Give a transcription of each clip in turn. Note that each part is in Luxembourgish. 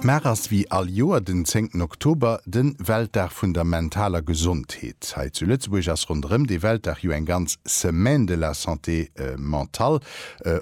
Mar ass wéi all Joer den zéngten Oktober de Weltdag vun der mentaler Gesondheet. Hei zu Lëtzebuerg ass ronderëm dee Weltdag jo eng ganz Semaine de la santé mentale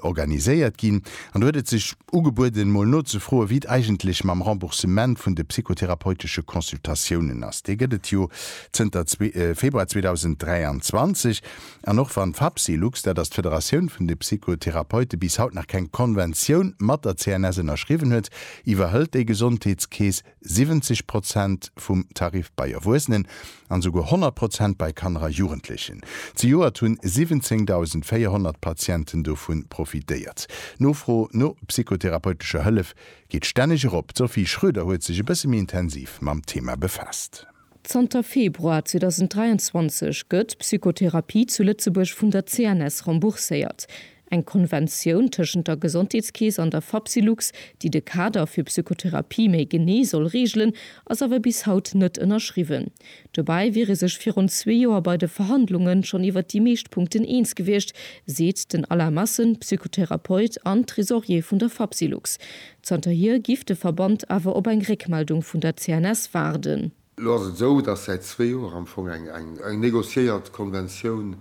organiséiert ginn. An do huet et sech ugebueden, mol nozefroen, wéi et eigentlech mam Remboursement vun de psychotherapeutesche Consultatiounen ass. Dee gëtt et jo zënter Februar 2023. An och wann d'Fapsylux, dat ass d'Federatioun vun de Psychotherapeute, bis haut nach keng Konventioun mat der CNS ënnerschriwwen huet, iwwerhëlt déi Gesondheetskeess 70 Prozent vum Tarif bei Erwuesenen an esouguer 100 Prozent bei Kanner a Jugendlechen. Zejoert hunn 17.400 Patienten dovun profitéiert. D'Nofro no psychotherapeutescher Hëllef geet stänneg erop. D'Sophie Schroeder huet sech e bësse méi intensiv mam Thema befaasst. Zanter Februar 2023 gëtt Psychotherapie zu Lëtzebuerg vun der CNS rembourséiert. Eng Konventioun tëschent der Gesondheetskeess an der Fapsylux, déi de Kader fir Psychotherapie méi genee soll reegelen, ass awer bis haut net ënnerschriwwen. Dobäi wier ee sech virun zwee Joer bei de Verhandlunge schonn iwwer déi meescht Punkten eens gewiescht, seet den Alain Massen, Psychotherapeut an Tresorier vun der Fapsylux. Zanterhier giff de Verband awer op eng Réckmeldung vun der CNS waarden. Elo ass et esou, datt säit zwee Joer am Fong eng negociéiert Konventioun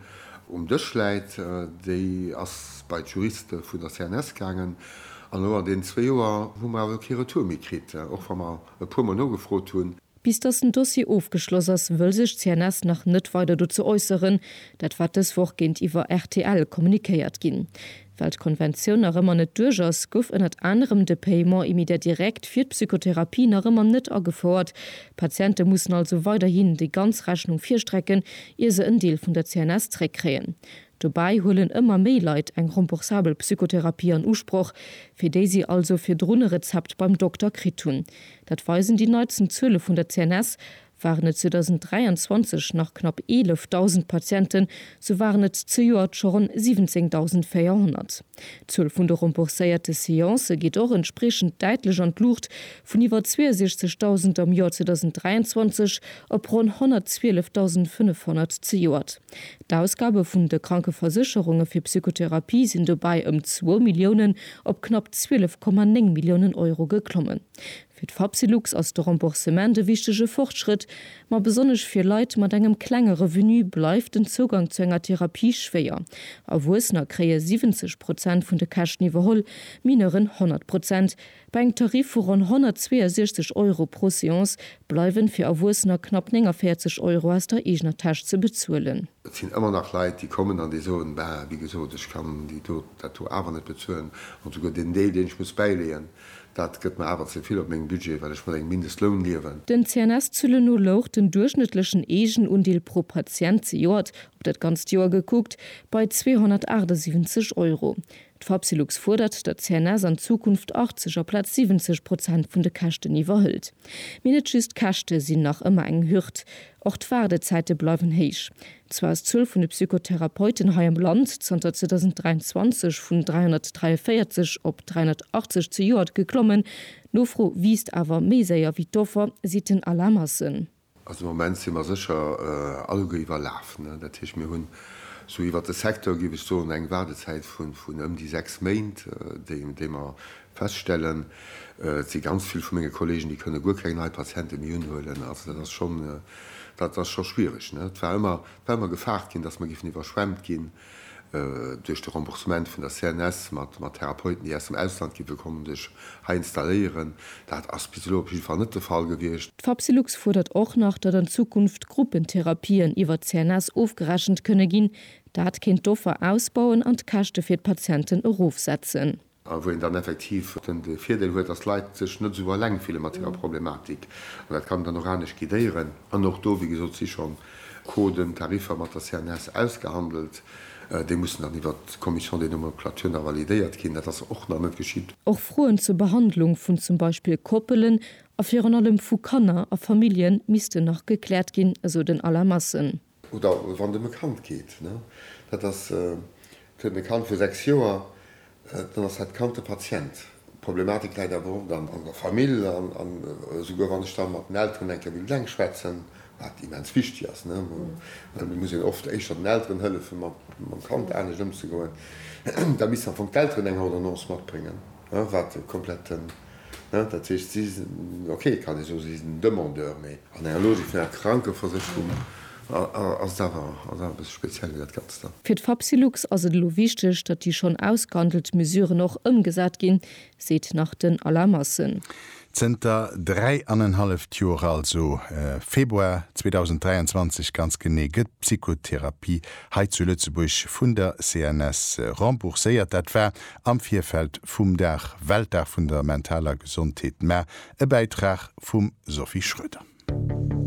um Dësch läit. Déi ass bei d'Juriste vun der CNS gaangen. An elo an deenen zwee Joer hu mer awer kee Retour méi kritt, och wa mer e puermol nogefrot hunn. Bis datt den Dossier ofgeschloss ass, wëll sech d'CNS nach net weider dozou äusseren. Dat war dës Woch géintiwwer rtl kommunikéiert ginn. Well d'Konventioun nach ëmmer net duerch ass, gouf ënnert anerem de Paiement immédiat direct fir d'Psychotherapie nach ëmmer net agefouert. D'Patiente mussen also weiderhin déi ganz Rechnung virstrecken, ier se en Deel vun der CNS zréckkréien. Dobäi huelen ëmmer méi Leit eng remboursabel Psychotherapie an Usproch, fir déi si also virdrun e Rezept beim Dokter kritt hunn. Dat weisen déi neitsten Zuele vun der CNS, Waren et 2023 nach knapp 11.000 Patienten, sou waren et zejoert scho ronn 17.400. D'Zuel vun de rembourséierte Seancë geet och entspriechend däitlech an d'Luucht, vun iwwer 62.000 am Joer 2023 op ronn 112.500 zejoert. D'Ausgabe vun de Krankeversécherunge fir Psychotherapie sinn dobäi ëm zwou Milliounen op knapp 12,9 Milliounen Euro geklommen. Fir d'Fapsylux ass de Remboursement e wichtege Fortschrëtt, ma besonnesch fir Leit mat engem klenge Revenu bleift den Zougang zu enger Therapie schwéier. Erwuessener kréie 70 Prozent vun de Käschten iwwerholl, Mineuren 100 Prozent. Bei engem Tarif vu ronn 162 Euro pro Seance bleiwen fir Erwuessener knapp 49 Euro aus der eegener Täsch ze bezuelen. Et sinn ëmmer nach Leit, déi kommen an déi soen, Bah, wéi gesot, ech kann déi do, dat do awer net bezuelen. An souguer deen Deel, deen ech muss bäileeën, dat gëtt mer awer ze vill op mengem Budget, well ech mat engem Mindestloun liewen. Den CNS-Zëlle no louch den duerchschnëttlechen Eegenundeel pro Patient zejoert, op dat ganzt Joer gekuckt, bei 278 Euro. D'Fapsylux fuerdert, datt d'CNS an Zukunft 80 aplaz 70 Prozent vun de Käschten iwwerhëlt. Mee net just d'Käschte sinn nach ëmmer eng Hürd, och d'Waardezäite bleiwen héich. Zwar ass d'Zuel vun de Psychotherapeuten hei am Land zanter 2023 vun 343 op 380 zejoert geklommen, d'Nofro wiisst awer méi séier wéi d'Offer, seet den Alain Massen. Also am Moment si mer sécher alleguer iwwerlaf. Dat heescht, mir hunn sou iwwert de Secteur, géif ech soen, eng Waardezäit vun ëm déi sechs Méint, déi mer feststellen. Et si ganz vill vu menge Kolleegen, déi kënne guer keng nei Patiente méi unhuelen. Also dat ass schonn, dat ass scho schwiereg. Et war ëmmer, et war ëmmer gefaart ginn, datt mer géifen iwwerschwemmt ginn. Duerch de Remboursement vun der CNS mat Therapeuten, déi aus dem Ausland gi wëll kommen, sech hei installéieren, dat ass bis elo op jidde Fall net de Fall gewiescht. D'Fapsylux fuerdert och nach, datt an Zukunft Gruppentherapien iwwer d'CNS ofgerechent kënne ginn. Dat kéint d'Offer ausbauen an d'Käschte fir d'Patienten erofsetzen. A wou een dann effektiv den Virdeel huet, dass d'Leit sech net esou eleng fille mat hirer Problematik. An dat kann een dann och anescht guidéieren. An och do, wéi gesot, et si scho Coden, Tariffer mat der CNS ausgehandelt. Déi mussen dann iwwert d'Commission des nomenclatures nach validéiert ginn. Dat ass och nach net geschitt. Och Froen zur Behandlung vun zum Beispill Koppelen a virun allem vu Kanner a Famillje missten nach gekläert ginn, esou den Alain Massen. Oder wann et ëm e Kand geet, dat ass, et huet e Kand vu 6 Joer, dann ass dat Kand de Patient. D'Problematik läit awer oft an der Famill an esouguer wann ech da mat den Elteren eng Kéier wéilt eng schwätzen, wat immens wichteg ass, well et muss een oft éischter den Elteren hëllefen, mam Kand anescht ëmzegoen, da missten am Fong d'Elteren eng Ordonnance matbréngen. Wat e kompletten, dat heescht, si sinn, ok, et kann ee soen, si sinn Demandeur, mee an enger Logik vun enger Krankeversécherung ass et awer e bësse speziell, dat Ganzt da. Fir d'Fapsylux ass et elo wichteg, datt déi schonn ausgehandelt Mesuren och ëmgesat ginn, seet nach den Alain Massen. Zënter dräi an en halleft Joer, also Februar 2023 ganz genee, gëtt d'Psychotherapie hei zu Lëtzebuerg vun der CNS rembourséiert. Dat war am Virfeld vum Dag, Weltdag vun der mentaler Gesondheet, mä e Bäitrag vum Sophie Schroeder.